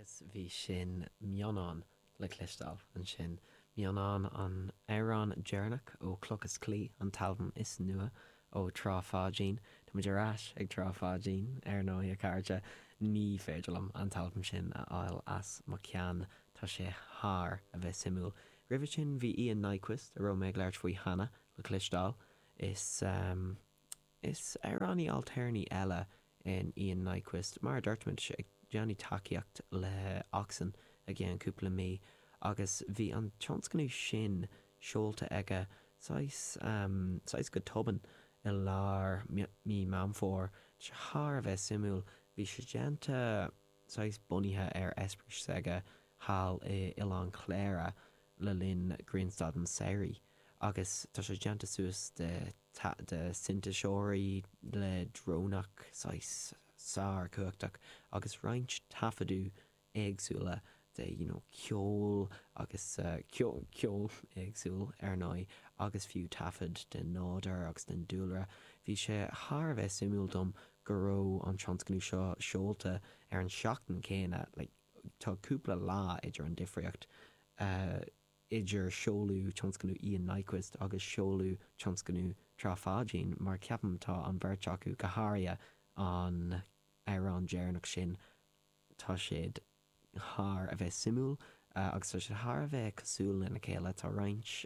Agus bhí sin Mionán le cloisteáil ansin, Mionán an amhrán deireanach ó Cloch is Claí, an t-albam is nua ó Trá Pháidín. Táimid ar ais ag Trá Pháidín, ar ndóigh, a chairde. Ní féidir liom an t-albam sin a fháil as mo cheann, tá sé thar a bheith suimiúil. Roimhe sin bhí Ian Nyquist, a raibh mé ag labhairt faoi cheana, le cloisteáil. Is. Is amhránaí ailtéarnaí eile in Ian Nyquist, mar a dúirt muid, ag déanamh tacaíocht le ØXN i gceann cúpla mí agus bhí an tionscnamh sin seolta aige saghas, em, saghas go tobann i lár mí Meán Fómhair, thar a bheith suimiúil, bhí sé déanta. saghas bunaithe ar eispéireas aige thall i Oileán Chléire le linn grianstad an tsamhraidh agus tá sé déanta suas de de sintéiseoirí leictreonach saghas sár chumhachtach agus roinnt taifeadadh éagsúla de, you know, ceol agus ceol éagsúil, ar ndóigh, agus fiú taifead den nádur agus den dúlra. Bhí sé thar a bheith suimiúil dom go raibh an tionscnamh seo seolta ar an tseachtain céanna, like, tá cúpla lá idir an difríocht idir seoladh tionscnamh Ian Nyquist agus seoladh tionscnamh Trá Pháidín, mar ceapaim tá an bheirt acu, go háirithe an amhrán deireanach sin, tá siad thar a bheith suimiúil agus tá siad thar a bheith cosúil lena chéile, tá roinnt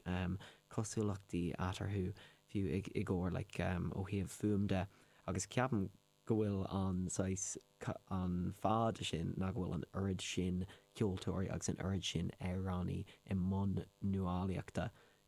cosúlachtaí eatarthu fiú i gcomhair like ó thaobh fuaim de agus ceapaim go bhfuil an saghas an fáth sin ná go bhfuil an oiread sin ceoltóirí agus an oiread sin amhránaí i mbun nuálaíochta